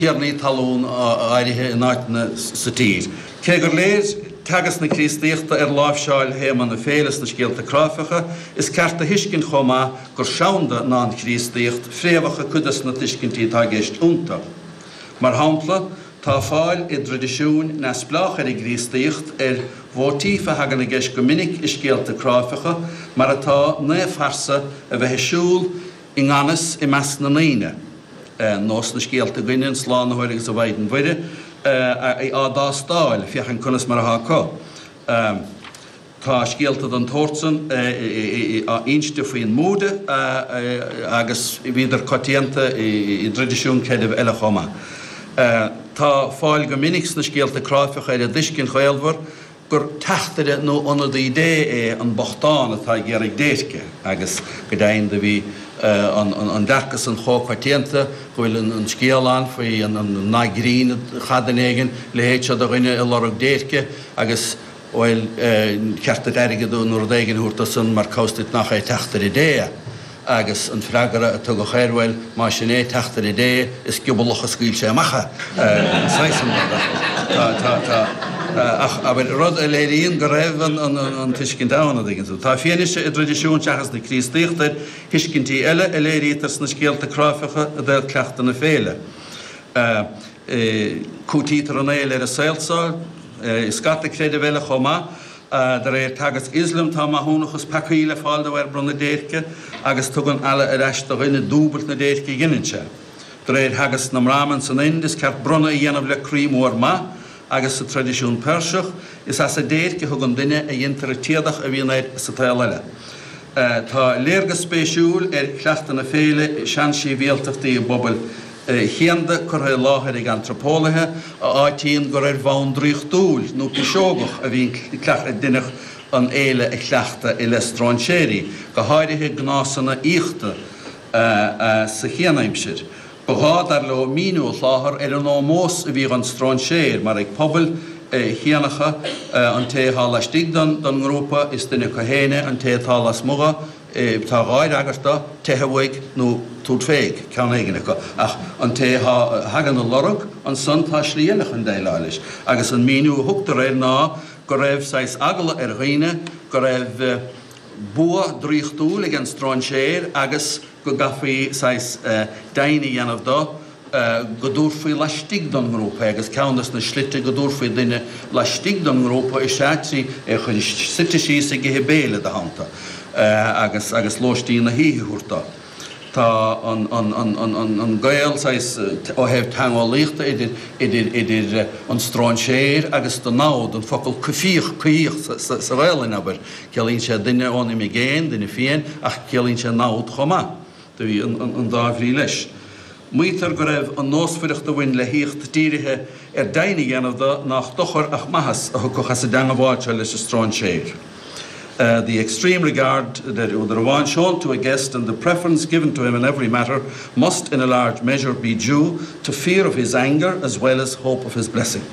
thiarnaí talún áirithe in áiteanna sa tír. Cé gur léir teagasc na Críostaíochta ar láimhseáil théama na féile sna scéalta cráifeacha, is ceart a thuiscint chomh maith gur seanda ná an Chríostaíocht fréamhacha cuid de na tuiscintí atá i gceist iontu. Mar shampla, tá fáil i dtraidisiúin neamhspleácha ar an gCríostaíocht ar mhóitíf a thagann i gceist go minic i scéalta cráifeacha, mar atá, naomhphearsa a bheith ag siúl, I ngan fhios, i measc na ndaoine, nó sna scéalta againne, an Slánaitheoir agus an Mhaighdean Mhuire á dtástáil, féachaint conas mar atá acu. Tá scéalta den tsórt san inste faoin mBúda agus bhíodar coitianta i dtraidisiúin creidimh eile chomh maith. Tá fáil go minic sna scéalta cráifeacha ar an dtuiscint ghaolmhar gur teachtaire nó ionadaí Dé é an bochtán atá ag iarraidh déirce, agus go deimhin do bhí an dearcadh san chomh coitianta go bhfuil an scéal ann faoi an nath grinn a cheadaionn éigin leithéid seo de dhuine ag lorg déirce agus bhuel, cheart duit airgead nó rud éigin a thabhairt dosan mar cá bhfios duit nach é teachtaire Dé é. Agus an freagra a tugadh air, bhuel, más sin é, teachtaire Dé, is giobalach a scaoil sé amach é, an saghas san, mar atá. Tá, tá, tá. Ach, abair, rud a léiríonn go raibh an, an, an, an tuiscint ann, a' dtuigeann tú. Tá fianaise i dtraidisiúin seachas na Críostaíochta ar thuiscintí eile a léirítear sna scéalta cráifeacha i dtaobh cleachtadh na féile. Cúitítear an fhéile ar an saol so i scata creideamh eile chomh maith. De réir teagasc Ioslaim, tá maithiúnachas peacaí le fáil de bharr bronnadh déirce, agus tugann Allah ar ais do dhuine dúbailt na déirce a dheineann sé. De réir theagasc na mBrahmin san Ind, is ceart bronnadh a dhéanamh le croí mór maith, agus sa traidisiún Peirseach, is as an déirc a thugann duine a dheintear an t-éadach a bhíonn air sa tsaol eile. Tá léargas spéisiúil ar chleachtadh na féile i seansibhialtachtaí i bpobail chianda curtha i láthair ag antraipeolaithe a áitíonn gur ar bhonn draíochtúil nó piseogach a bhíonn deineadh an fhéile a chleachtadh i leith stróinséirí, go háirithe gnásanna aíochta sa chianaimsir. Ba ghá, dar leo, míniú a sholáthar ar an ómós a bhí dhon stróinséir, mar ag pobail chianacha, an té atá laistigh den ngrúpa, is duine acu féin é, an té atá lasmuigh, tá dhá fhreagairt dó, teitheadh uaidh, nó tabhairt féig, ceann éigin acu, ach an té a thagann ag lorg, ansan tá slí eile chun déileáil leis, agus an míniú a thugtar air ná go raibh saghas eagla ar dhaoine go raibh bua draíochtúil ag an stróinséir agus, go gcaithfí saghas deimhin a dhéanamh de go dtabharfaí laistigh den ngrúpa é agus ceann de na slite go dtabharfaí duine laistigh den ngrúpa is ea trí é a chur suite síos ag ithe béile id theannta agus lóistín na hoíche a thabhairt dó. Tá an gaol saghas ó thaobh teangeolaíochta idir an stróinséir agus do namhad, an focal coimhthíoch, coimhthíoch sa Ghaelainn, abair, Ciallaíonn sé duine ón imigéin, duine fiáin, ach ciallaíonn sé namhad chomh maith. Do bhí an dá bhrí leis. Maítear go raibh an nósmhaireacht a bhain le haíocht dírithe ar deimhin a dhéanamh de nách dochar ach maitheas a thiocfadh as an dteangmháil leis an stróinséir, 'the extreme regard deir údar amháin shown to a guest and the preference given to him in every matter must in a large measure be due to fear of his anger as well as hope of his blessing'.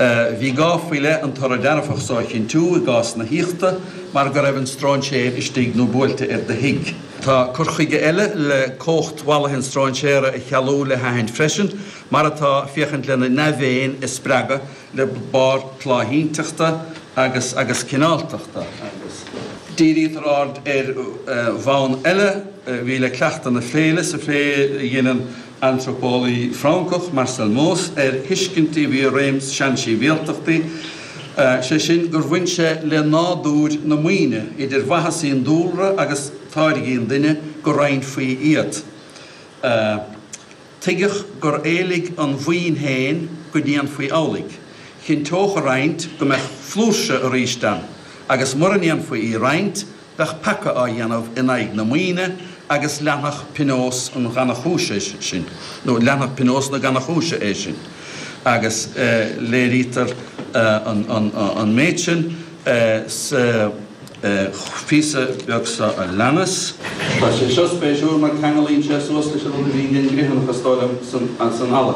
Bhí gá faoi leith an toradh dearfach so a chinntiú i gcás na haíochta mar go raibh an stróinséir istigh nó buailte ar do thigh. Tá cur chuige eile le cumhacht mhallaithe an stróinséara a chealú le haithint freisin, mar atá, féachaint lena ndea-mhéin a spreagadh le barr tláithínteachta agus agus cineáltachta agus. Dírítear aird ar bhonn eile a bhí le cleachtadh na féile sa phlé a dheineann antraipeolaí Francach, Marcel Mauss, ar thuiscint a bhí i réim i seansibhialtachtaí, sé sin, gur bhain sé le nádúr na maoine, idir mhaitheasaí an dúlra agus táirgí an duine, go roinnfaí iad. Tuigeadh gur éiligh an mhaoin féin go ndéanfaí amhlaidh. Chinnteodh a roinnt go mbeadh flúirse arís ann, agus mura ndéanfaí í a roinnt, Bheadh peaca á dhéanamh in aghaidh na maoine agus leanfadh pionós an ghannachúis é sin, nó leanfadh pionós na gannachúise é sin, agus léirítear an méid sin sa phíosa beag seo a leanas. Tá sé seo spéisiúil mar ceanglaíonn sé suas leis an rud a bhí den gcritheanachas dóibh san Halla.